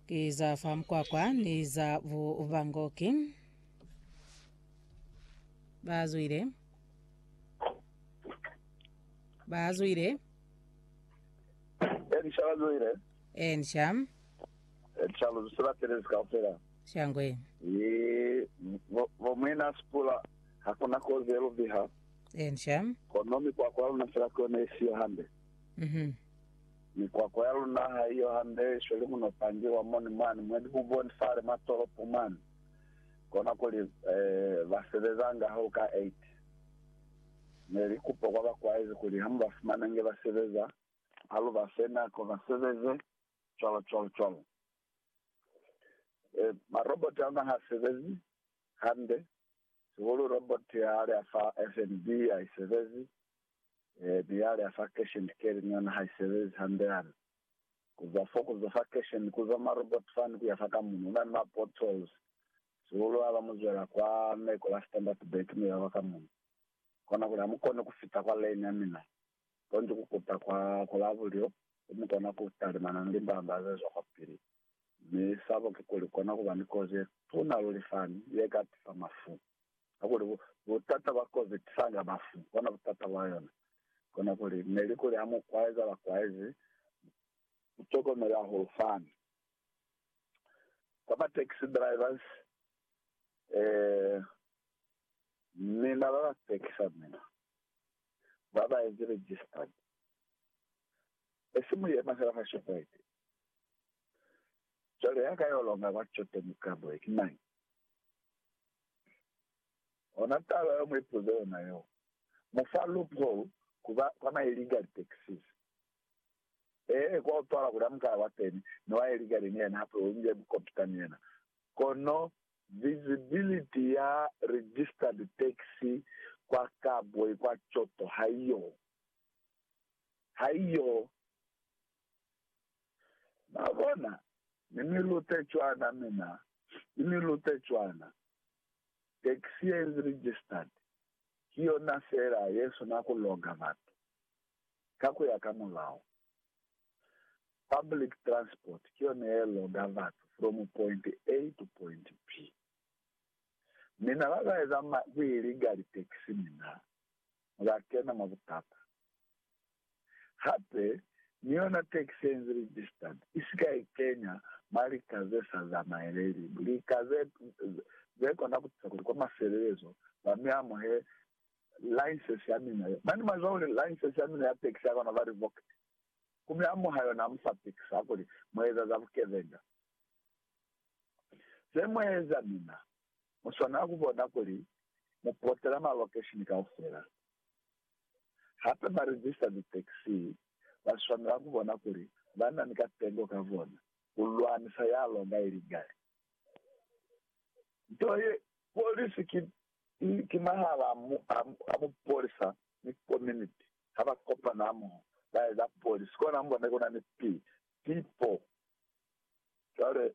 Ki za fa mukwakwa ni za bubangoki. Bazwile. Bazwile. Elisha bazwile. Ensha. Elisha luzwise batelezi kaufela. Shangwe. Ye, vo- vomwena sipula hakuna kozi eluviha Ensha. kono mikwakwa luna fela kone isiyo hande Mhm. Mikwakwa ya luna ha i yo hande, sweli muno pangi wa moni mwani mwe dihuboni fale mwa tolopo mwani, kona kuli ba sebezanga ha u ka 8. Ne li kupa kwa ba kwaezi kuli ha mu ba fumana inge ba sebeza, ha lu ba fe nako ba sebeze, cwalo cwalo cwalo. Maroboti a luna ha sebezi hande, sihulu roboti ya hale ya fa FNB ha i sebezi, Ee, biale a fa kesheni keli ni yona ha i sebezi hande hana. Ku zwa fo, ku zwa fa kesheni, ku zwa mwa robot fani ku ya fa ka muno, u na ni ma portals. Sihulu ha ba mu zwela kwa neko la Standertburg mi ba ba ka muno. Kona kuli ha mu koni ku fita kwa lane ya mina, konji ku kuta kwa, kwa la bulyo, ku mu kona ku talimana ni limbamba ze zwa kwa pili. Mi sabo kikuli, kona ku ba ni kozi ye tuna luli fani, ye ka tifa mafu. Hakuli bu, butata bwa kozi trunk ya bafu, kona butata bwa yona. Kona kuli, neli kuli ha mu kwaeza bakwaezi, mu tokomele hahulu fani. Kwa ba taxi drivers, eh, mina ba ba pekisa mina, ba ba ezi registered. E si mu yema fela fa Shoprite. Cwale ya ka yo longa kwa coteni ka boye, ki mañi? Ona taba yo muipuza yona yo. Mu fa loophole ku ba kwa ma illegally taxis. Ee, kwa utwala kuli amuka ya kwateni ni wa illegally ni yena hape u inge bukopita ni yena. Kono visibility ya registered taxi kwa Kabwe kwa Choto haiyo. haiyo. Mwabona? Ni mi lute cwana, mina, ni mi lute cwana. Taxi ye inzi registered, ki yona fela ye sina ku loga batu, ka ku ya ka mulao. Public transport ki yona ye loga batu from point A to point B. Mina ba ba eza ma, ku iligali taxi, mina, mu la kena mwa butata. Hape, ni yona tax ye nzi registered i si ka ikenya mwa lika ze sa zamaeleli lika ze, ze kona ku tusa kuli kwa mafelelezo ba mi amuhe license ya mina ye mane mwa zwa kuli license ya mina ya tax ya kona ku ba revoked. Ku mi amuha yona ha mu fa tax ha kuli mu eza za bukebenga. Ze mu eza mina Mu swanela ku bona kuli mu potela malokeshini kaufela. Hape ba rizisa litaxi ba swanela ku bona kuli ba na ni katengo ka bona ku lwanisa ya longa iligali. Nto ye polisi ki ki mahala a mupolisa ni kominiti ha ba kopana hamoho ba eza polisi, kona mu bona ku na ni pipo. Cwale